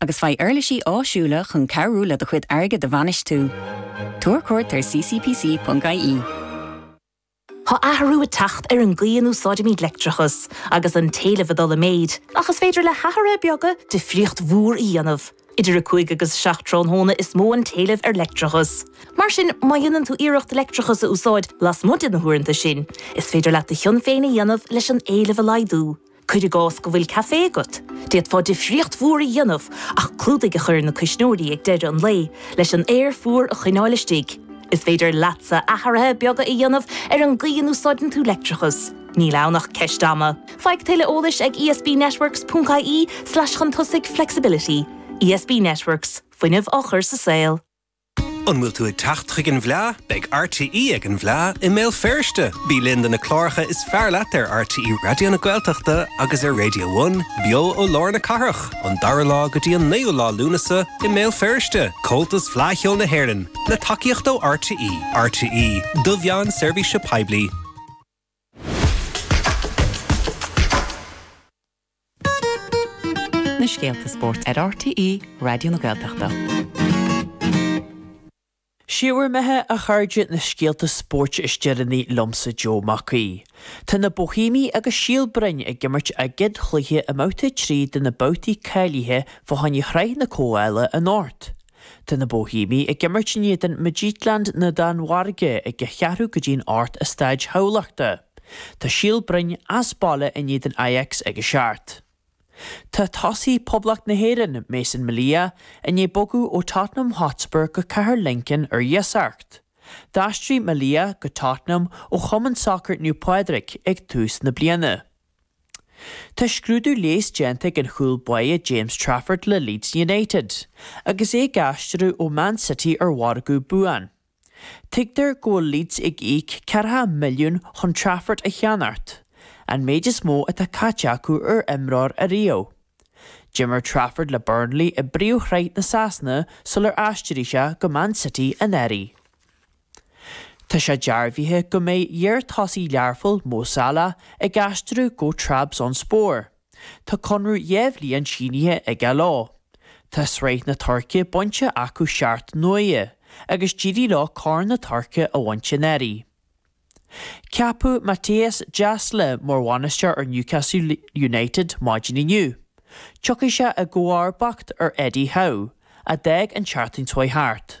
agus faigh uirlisí áisiúla chun cabhrú le do chuid airgid a bhainistiú. Tabhair cuairt ar ccpc ponc ie. Tá athrú ag teacht ar an gcaoi a n-úsáidimid leictreachas, agus an t-éileamh ag dul i méid, ach is féidir le hathruithe beaga difríocht mhór a dhéanamh. Idir 5 agus 7 tráthnóna is mó an t-éileamh ar leictreachas. Mar sin, má dhéanann tú iarracht leictreachas a úsáid lasmuigh de na huaireanta sin, is féidir leat do chion féin a dhéanamh leis an éileamh a laghdú. Cuir i gcás go bhfuil café agat, d'fhéadfá difríocht mhór a dhéanamh ach clúdaigh a chur ar na cuisneoirí ag deireadh an lae leis an aer fuar a choinneáil istigh. Is féidir leatsa athruithe beaga a dhéanamh ar an gcaoi a n-úsáideann tú leictreachas. Níl ann ach ceist ama. Faigh tuilleadh eolais ag ESBnetworks ponc ie slash chun tosaigh flexibility. ESB Networks, fuinneamh á chur sa saol. An bhfuil tú ag teacht chuig an bhFleá? Beidh RTÉ ag an bhFleá i mBéal Feirste! Bí linn do na cláracha is fearr leat ar RTÉ Raidió na Gaeltachta agus ar Raidió One, beo ó lár na cathrach, ón 2ú lá go dtí an 9ú lá Lúnasa i mBéal Feirste! Comhaltas Fleá Cheoil na hÉireann, le tacaíocht ó RTÉ. RTÉ, do mheán seirbhíse poiblí. na scéalta spóirt ar RTÉ Raidió na Gaeltachta. Sibh ar maithe a chairde na scéalta spóirt is deireanaí liomsa Joe Mac Aoidh. Tá na Bóithéamaigh agus Síol Bhroin ag imirt a gcéad chluiche i mbabhta 3 de na babhtaí cáilithe fá choinne Shraith na Comhdhála anocht. Tá na Bóithéamaigh ag imirt in éadan Midtjylland na Danmhairge ag ceathrú go dtí an hocht i Staid Thamhlachta. Tá Síol Bhroin as baile in éadan Ajax ag a seacht. Tá tosaí Poblacht na hÉireann, Mason Melia, i ndiaidh bogadh ó Tottenham Hotspur go Cathair Lincoln ar iasacht. D'aistrigh Melia go Tottenham ó chumann sacair Naomh Pádraig ag tús na bliana. Tá scrúdú leighis déanta ag an chúl báire James Trafford le Leeds United, agus é ag aistriú ó Man City ar mhargadh buan. Tuigtear go bhfuil Leeds ag íoc ceathracha milliún chun Trafford a cheannach, an méid is mó atá caite acu ar imreoir ariamh. D'imir Trafford le Burnley i bpríomhshraith na Sasana sular aistrigh sé go Man City anuraidh. Tá sé dearbhaithe go mbeidh iarthosaí Learphoill, Mo Salah, ag aistriú go Trabzonspor. Tá conradh dhá bhliain sínithe aige leo. Tá Sraith na Tuirce bainte acu seacht n-uaire agus d'éirigh leo Corn na Tuirce a bhaint anuraidh. Ceapadh Mattias Jaissle mar bhainisteoir ar Newcastle United maidin inniu. Tiocfaidh sé i gcomharbacht ar Eddie Howe, a d'fhág an tseachtain seo thart.